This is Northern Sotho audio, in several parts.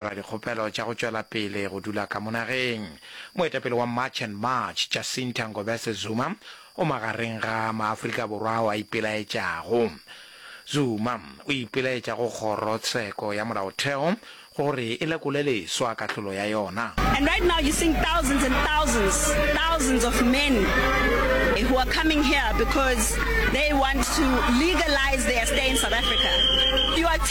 dira dikgopelo tša go tšwela pele go dula ka mo nageng. Moetapele wa March and March, Jacinta Ngobese Zuma, o magareng ga maAfrika Borwa ao a ipelaetšago. Zuma o ipelaetša go Kgoro tsheko ya Molaotheo gore e lekole leswa kahlolo ya yona. And right now you're seeing thousands and thousands, thousands of men who are coming here because they want to legalize their stay in South Africa. You are.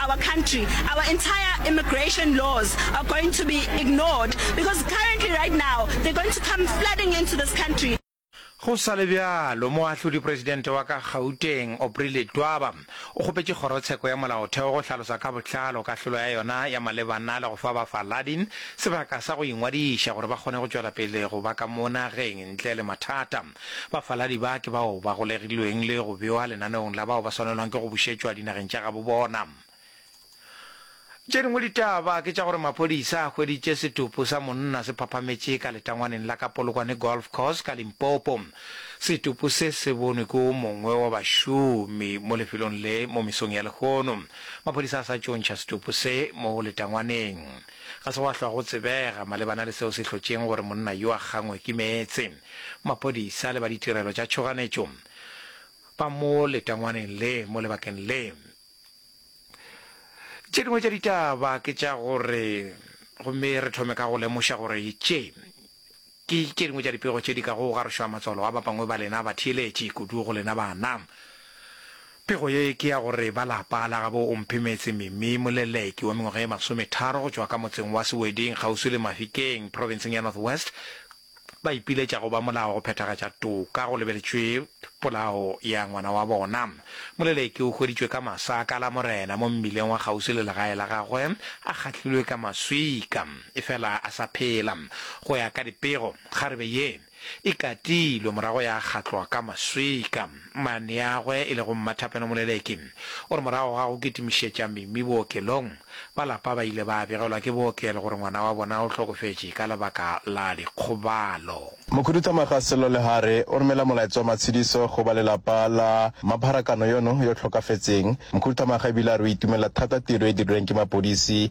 our country, our entire immigration laws are going to be ignored because currently right now they're going to come flooding into this country. Go sa le bjalo, Moahlodi-Presidente wa ka Gauteng, Aubrey Letwaba, o kgopetše Kgorotsheko ya Molaotheo go hlalosa ka botlalo kahlolo ya yona ya malebana le go fa bafaladi sebaka sa go ingwadiša gore ba kgone go tšwela pele go ba ka mo nageng ntle le mathata. Bafaladi ba ke bao ba golegilweng le go bewa lenaneong la bao ba swanelwang ke go bušetšwa dinageng tša gabo bona. Tše dingwe ditaba ke tša gore maphodisa a hweditše setopo sa monna se phaphametše ka letangwaneng la ka Polokwane Golf Course ka Limpopo. Setopo se se bonwe ke o mongwe wa bašomi mo lefelong le mo mesong ya lehono. Maphodisa a sa tšontšha setopo se mo letangwaneng. Ga se gwa hlwa go tsebega malebana le seo se hlotšeng gore monna yo a kgangwe ke meetse. Maphodisa le ba ditirelo tša tšhoganetšo ba mo letangwaneng le mo lebakeng le. Tše dingwe tša ditaba ke tša gore gomme re thome ka go lemoša gore tše ke tše dingwe tša dipego tše di ka go garošwa matswalo a ba bangwe ba lena ba theeletše kudu go lena bana. Pego ye ke ya gore ba lapa la gabo Omphemetse Mimi Moleleki wa mengwaga ye masometharo go tšwa ka motseng wa Seweding kgauswi le Mafikeng profenseng ya North West ba ipiletša go ba molao go phethagatša toka go lebeletšwe polao ya ngwana wa bona. Moleleki o hweditšwe ka masaka a la Morena mo mmileng wa kgauswi le legae la gagwe a kgahlilwe ka maswika efela a sa phela. Go ya ka dipego, kgarebe ye e katilwe morago ya kgatlwa ka maswika. Mmaneagwe e lego Mmathapelo Moleleki o re morago ga go kitimišetša Mimi bookelong, ba lapa ba ile ba begelwa ke bookelo gore ngwana wa bona o hlokofetše ka lebaka la dikgobalo. Mokhuduthamaga Sello Lehare o romela molaetsa wa matshediso go ba lelapa la mapharakano yono yo hlokafetseng. Mokhuduthamaga ebile a re o itumelela thata tiro e dirilweng ke mapodisi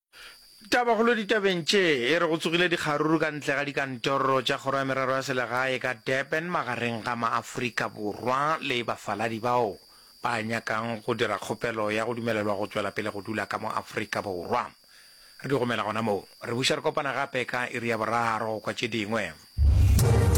Tabakgolo ditabeng tše e re go tsogile dikgaruru ka ntle ga dikantoro tša Kgoro ya Merero ya Selegae ka Durban magareng ga maAforika Borwa le bafaladi bao ba nyakang go dira kgopelo ya go dumelelwa go tšwela pele go dula ka mo Afrika Borwa. Re di gomela gona moo. Re buša re kopana gape ka iri ya boraro go kwa tše dingwe.